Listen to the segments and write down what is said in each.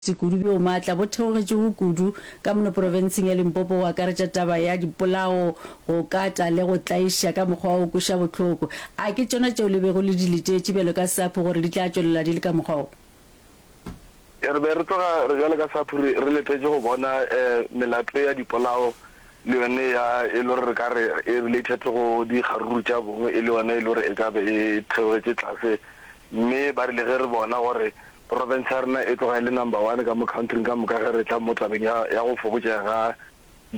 Sekudu bjo maatla bo theogetšego kudu ka mono profenseng ya Limpopo go akaretša taba ya dipolao, go kata le go tlaiša ka mokgwa o kweša bohloko. A ke tšona tšeo le bego le di letetše bjalo ka SAPHU gore di tla tšwelela di le ka mokgwa wo? Re be re tloga re bjalo ka SAPHU re letetše go bona melato ya dipolao le yone ya e le gore re ka re e related go dikgaruru tša bong e le yone e le gore e ka be e theogetše tlase mme ba rile ge re bona gore province ya rena e tloga e le number one ka mo countryng ka moka ge re tla mo tabeng ya ya go fokotšega ga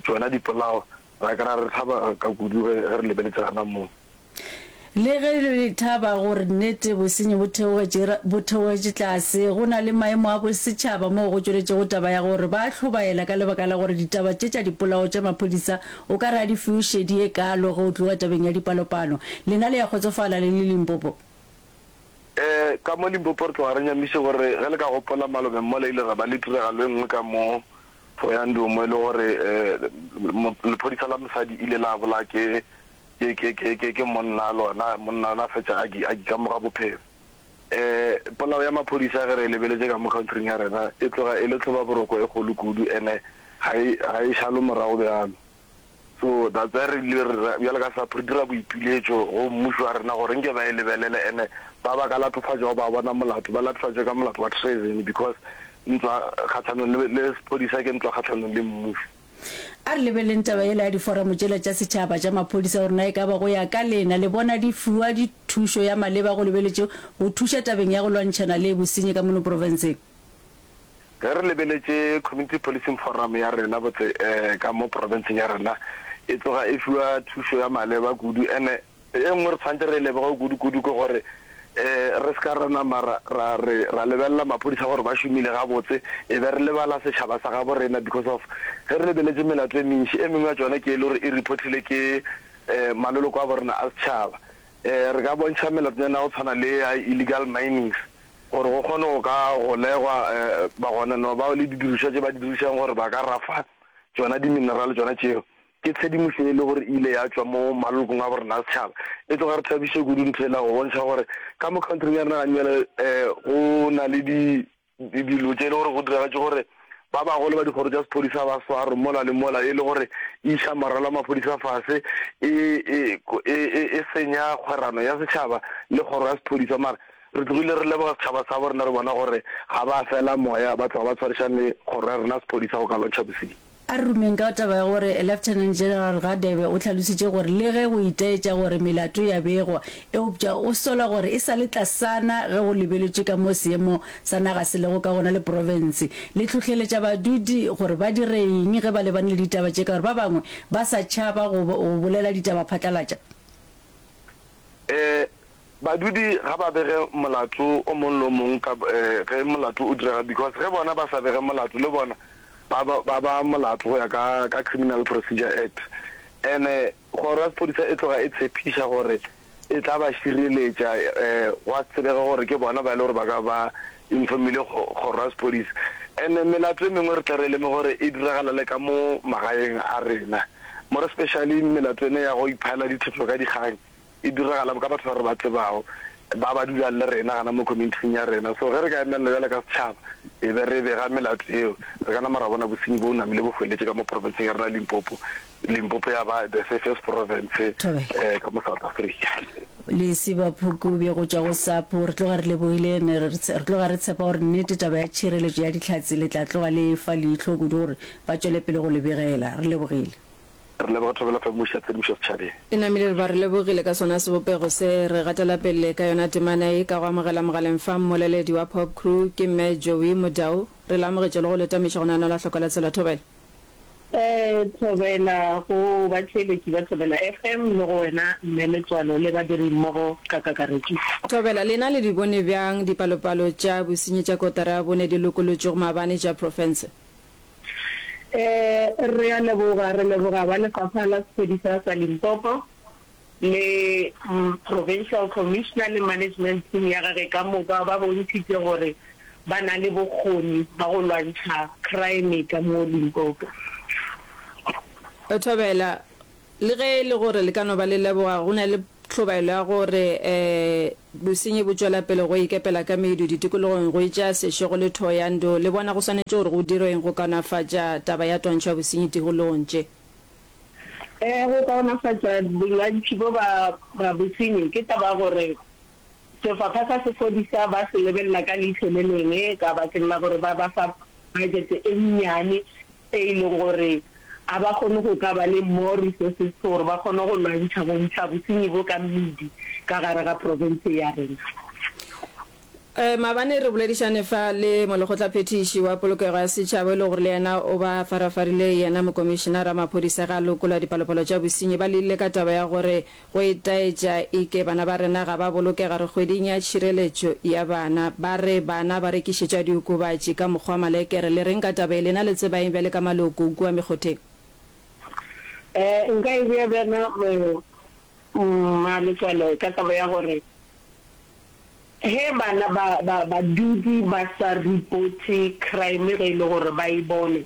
tšona dipolao ra kry-a re thaba ka kudu ge re lebeletse gana moo. Le ge re le thaba gore nnete bosenyi bo theogetše, bo theogetše tlase, go na le maemo a bosetšhaba moo go tšweletšego taba ya gore ba a hlobaela ka lebaka la gore ditaba tše tša dipolao tša maphodisa o ka re a di fiwe šedi ye kaalo ge o tloga tabeng ya dipalopalo. Lena le ya kgotsofala le le Limpopo? Ee, ka mo Limpopo re tloga re nyamiše gore ge le ka gopola malobeng mola ile ra ba le tiragalo e nngwe ka mo Thohoyandou mo e le gore lephodisa la mosadi ile la bolaya ke ke ke ke ke ke monna lona monna lona fetša a a kamoga bophelo um polao ya maphodisa ge re lebeletše ka mo countryng ya rena e tloga e le tlhoba boroko e kgolo kudu ene ga e ga e šalo morago bjalo so that's why re ile re bjalo ka sapho re dira boipiletšo go mmušo wa rena gore nke ba e lebelele ene ba ba ka latofatšago ba bona molato ba latofatšwe ka molato wa treason because ntwa kgatlhanong le sephodisa ke ntwa kgatlhanong le mmušo A re lebeleleng taba yela ya diforamo tšela tša setšhaba tša maphodisa gore na e ka ba go ya ka lena le bona di fiwa di thušo ya maleba go lebeletše go thuša tabeng ya go lwantšhana le bosenyi ka mono profenseng. Ge re lebeletše Community Policing Forum ya rena botse ka mo profenseng ya rena e tloga e fiwa thušo ya maleba kudu ene E nngwe re tshwanetse re e leboge kudukudu ke gore re se ka ra nama ra re ra lebelela maphodisa gore ba šomile gabotse e be re lebala setšhaba sa gabo rena because of ge re lebeletše melato e mentši e mengwe ya tšona ke e le gore e reportile ke maloloko a bo rena a setšhaba. Re ka bontšha melatonyana ya go tshwana le ya illegal minings gore go kgone go ka golegwa bagononwa bao le didirišwa tše ba di dirišang gore ba ka rafa tšona di-mineral tšona tšeo. Ke tshedimošo e le gore e ile ya tšwa mo malokong a borena a setšhaba. E tloga re thabiše kudu ntho yela go bontšha gore ka mo khaontring ya rena gane bjale go na le di dilo tše e le gore go diragatše gore ba bagolo ba dikgoro tša sephodisa ba swarwe mola le mola e le gore e iša moralo wa maphodisa fase, e, e, e, e, e senya kgwerano ya setšhaba le kgoro ya sephodisa. Mara re tlogile re leboga setšhaba sa borena re bona gore ga ba fela moya ba tloga ba tshwarišane le kgoro ya rena ya sephodisa go ka lwantšha bosenyi. A re rumeng ka taba ya gore Lieutenant General Radebe o hlalositše gore le ge go itaetša gore melato ya begwa, eupša o sola gore e sa le tlasana ge go lebeletšwe ka mo seemo sa naga se lego ka gona le profense. Le hlohleletša badudi gore ba dire eng ge ba lebane le ditaba tše ka gore ba bangwe ba sa tšhaba go bolela ditaba phatlalatša? Ee, Badudi ga ba bege molato o mong le o mong ka ge molato o direga because ge bona ba sa bege molato le bona ba ba ba molato go ya ka ka Criminal Procedure Act ene kgoro ya sephodisa e tloga e tshepiša gore e tla ba šireletša gwa se tsebege gore ke bona ba e le gore ba ka ba informile kgoro ya sephodisa ene melato e mengwe re tle re leme gore e diragala le ka mo magaeng a rena more especially melato ene ya go iphaela dithetho ka dikgang E diragala ka batho ba re ba tsebago, ba ba dulang le rena gana mo community-ing ya rena. So ge re ka emelela bjale ka setšhaba, e be re bega melato yeo, re ka nama ra bona bosenyi bo namile bo hweletše ka mo province-eng ya rena ya Limpopo. Limpopo ya ba the safest province ka mo South Africa. Lesiba Phukubje go tšwa go SAPO, re tloga re lebogile. Ne re tloga re tshepa gore nnete taba ya tšhireletšo ya dihlatse le tla tloga le e fa leihlo kudu gore ba tšwele pele go le begela. Re lebogile. Re leboga Thobela Famoša ya Tshedimošo Setšhabeng. E namile re ba re lebogile ka sona sebopego se. Re gatela pele ka yona temana ye ka go amogela mogaleng fa mmoleledi wa Pop Crew ke Mme Joey Modau. Re le amogetše le go le tameša go nanola hloko la tsela Thobela. Thobela, go batheeletši ba Thobela FM le go wena Mme Letswalo le badirimmogo ka kakaretšo. Thobela, lena le di bone bjang dipalopalo tša bosenyi tša kotara ya bone di lokolotšwego maabane tša profense? Um re a leboga, re leboga ba Lefapha la Sephodisa sa Limpopo le Provincial Commissioner le Management Team ya gage ka moka, ba bontšhitše gore ba na le bokgoni ba go lwantšha crime ka mo Limpopo. Thobela, Le ge e le gore le ka no ba le leboga, go na le tlhobaelo ya gore um Bosenyi bo tšwela pele go ikepela ka medu ditikologong go etša sešego le thoyando. Le bona go swanetše gore go dirweng go kaonafatša taba ya twantšho ya bosenyi tikologong tše? Ee, go kaonafatša bolwantšhi bjo bja bosenyi ke taba ya gore sefapha sa sephodisa ba se lebelela ka leihlo le lengwe ka bakeng la gore ba ba fa bajete e nnyane tše e lego gore ga ba kgone go ka ba le more resources for gore ba kgone go lwantšha go ntšha bosenyi bo ka mmidi ka gare ga profense ye ya rena. Um maabane re boledišane fa le molekgotlaphethiši wa polokego ya setšhaba e le gore le yena o ba farafarile yena mokomišenara wa maphodisa ge a lokola dipalopalo tša bosenyi ba le ile ka taba ya gore Go itaetša e ke bana ba rena ga ba bolokega re kgweding ya tšhireletšo ya bana. Ba re bana ba rekišetšwa diokobatši ka mokgwa wa malekere. Le reng ka taba ye? Lena le tseba eng bjale ka maloko kua mekgotheng? Ee, nka e bea bjana mmaletswale ka taba ya gore ge bana ba, ba, badudi ba sa reporte crime ge e le gore ba e bone,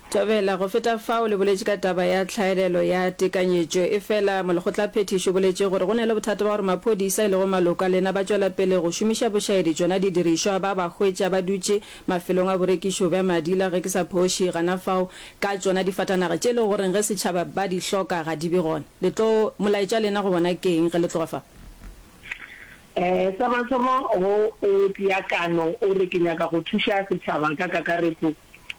Thobela, go feta fao, le boletše ka taba ya tlhaelelo ya tekanyetšo. Efela molekgotlaphethiši o boletše gore go na le bothata bja gore maphodisa, e lego maloko a lena, ba tšwela pele go šomiša bošaedi tšona didirišwa ba ba hwetša ba dutše mafelong a borekišo bja madila, ge ke sa phoše, gana fao ka tšona difatanaga tše e lego gore ge setšhaba ba di hloka ga di be gona. Le tlo, molaetša lena go bona ke eng ge le tloga fa? Ee, sa mathomo go o tia kano o re ke nyaka go thuša setšhaba ka kakaretšo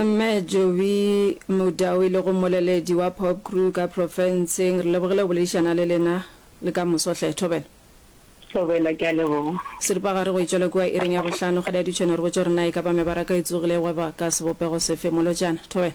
Mme Joey Mudau e lego mmoleledi wa Popcru ka profenseng, re lebogile go boledišana le lena le ka moso hle. Thobela. Thobela, ke a leboga. Seripagare go e tšwele kua iring ya bohlano, kgadi a dutše eno re botše gore na e ka ba mebaraka e tsogile e gweba ka sebopego sefe, molotšana. Thobela.